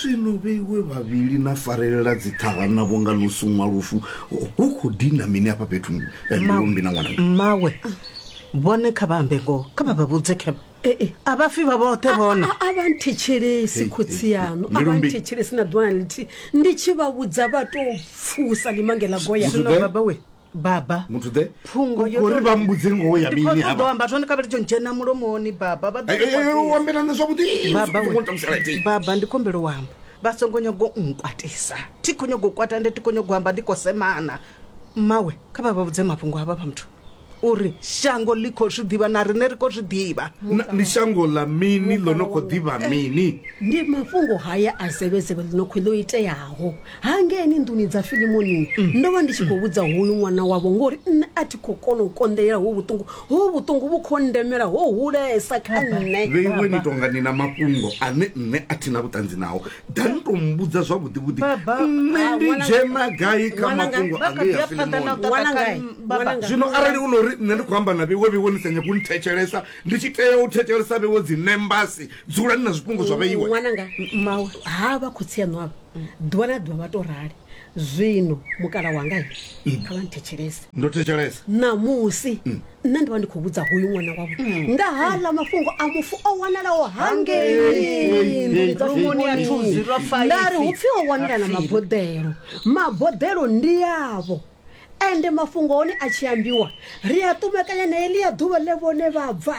zwino vheiwe vhavhili na farelela dziṱhara na vhonga ḽo suṅwa lufu hu khou dina mini hafha fhethu eh, mbilumbi na ṅwana mmawe vhone kha vha ambe ngoho kha vha vha vhudze khe a vha fi vha vhoṱhe vhona a vha nthetshelesi khotsi yaṋu a vha Mbilumbi. nthetshelesi na ḓuvha na ḽithihi ndi tshi vha vhudza vha tou pfusa limangela goya Zwiḓe. baba we baba muthu ḓe phungo yo uri to- vha mbudze ngoho ya Ndi mini khou ṱoḓa u hava amba zwone kha vhari tsho ndzhena mulomoni baba vha ḓo Eh, eh, eh, nkwatisa. u ambela nṋe zwavhuḓi Baba we- utamusalati baba ndi khombelo u amba vha songo nyago u nkwatisa thi khou nyago u kwata nde thi khou nyago u amba ndi khou semana mmawe kha vha vha vhudze mafhungo avha vha muthu uri shango ḽi khou zwi ḓivha na riṋe ri khou zwi ḓivha ndi shango ḽa mini ḽo no khou ḓivha mini ndi mafhungo haya a zevhezevhe ḽino khou ḽo iteaho hangeni nḓuni dza filimoni ndo vha ndi tshi khou vhudza hoyu ṅwana wavho ngori nṋe a thi khou kona u konḓelela ho vhuṱungu ho vhuṱungu vhu khou ndemela ho hulesa kha nṋe vhe iwe ni tonga ni na mafhungo ane nṋe a thi na vhuṱanzi nao da ni tou mbudza zwavhuḓivhuḓi Baba. nṋe Ah, ndi ṅwana- dzhena gai kha ṅwana nga- mafhungo vha kha ḓi angeya ya phanḓa na u filimoni ṱaṱa Wana kha ngai? m- baba. Wana ngai? zwino arali u no ri nṋe ndi khou amba na vheiwe vheiwe ni sa nyagi u nthetshelesa ndi tshi tea u thetshelesa vheiwe dzi nembasi dzulani na zwifhungo zwa vheiwe ṅwananga mawe ha vha khotsi aṋu avha ḓuvha na ḓuvha vha to rali zwino mukala wanga he kha vha nthetshelese ndo thetshelesa ṋamusi nṋe ndi vha ndi khou vhudza hoyu ṅwana wavho nga haḽa mafhungo a mufu o wanalaho hangei nḓuni dza Lungoni ya Thuzi, lwa Faifi. ndari hu pfi o wanala na maboḓelo maboḓelo ndi yavho Ende mafhungo hone a tshi ambiwa, ri a ṱumekanya na heḽia ḓuvha ḽe vhone vha bva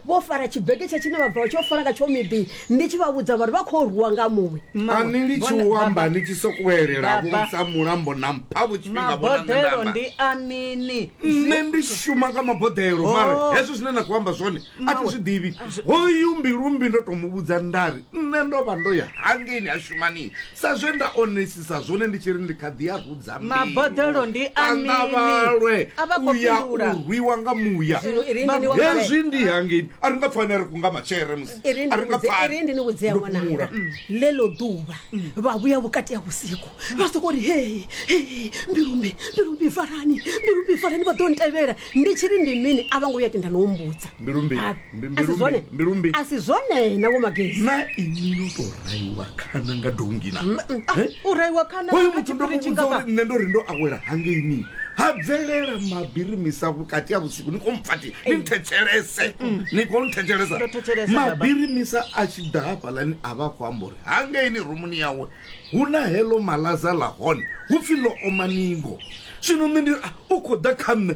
vho fara tshibegetsha tshine vha bva vha tshi yo fara nga tsho miḓi, ndi tshi vha vhudza vha ri vha khou rwiwa nga muṅwe. A ni litshi u amba ni tshi sokou elela vho ntsa mulambo na mpha vho tshifhinga vho na nṋe nda amba. Ndi a mini? Nṋe ndi shuma nga maboḓelo, mara hezwo zwine na khou amba zwone a thi zwi ḓivhi. Hoyu Mbilumbi ndo tou mu vhudza nda ri nṋe ndo vha ndo ya hangeini ha Shumanii Sa zwe nda onesisa zwone ndi tshi ri ndi kha ḓi a rudza mbilu. Maboḓelo ndi a A nga mini? vhalwe A vha khou u ya fhindula. u rwiwa nga muya. Zwino i ri ndi ni vhudze- Hezwi ndi hangei. A ri nga pfa ane a ri kunga matshele musi. i ri A ri nga pfa ane. ndi ni vhudzea Ndo fhumula. ṅwananga ḽeḽo ḓuvha vha vhuya vhukati ha vhusiku vha soko ri hei hei mbilumbi mbilumbi farani mbilumbi farani vha ḓo ntevhela ndi tshi ri ndi mini a vha ngo vhuya tenda no humbudza Mbilumbi. A- Mbi- mbilu asi zwone mbi- mbilu mbi. asi zwone na vho magezi na ini yo tou raiwa khana nga dongi na Eh? u raiwa khana hoyu kha muthu ndo tshipiriti muvhudza ngafha. uri nṋe ndo ri ndo awela hangeini ha bvelela mabirimisa vhukati ha vhusiku ni khou mpfati ni nthetshelese ni khou nthetshelesa Ndo thetshelesa, baba. mabirimisa a tshi ḓa hafhalani a vha khou amba uri hangeini rumuni yawe hu na heḽo malaza ḽa hone hu pfhi ḽo oma ningo zwino nṋe ndi ah, u khou ḓa kha nṋe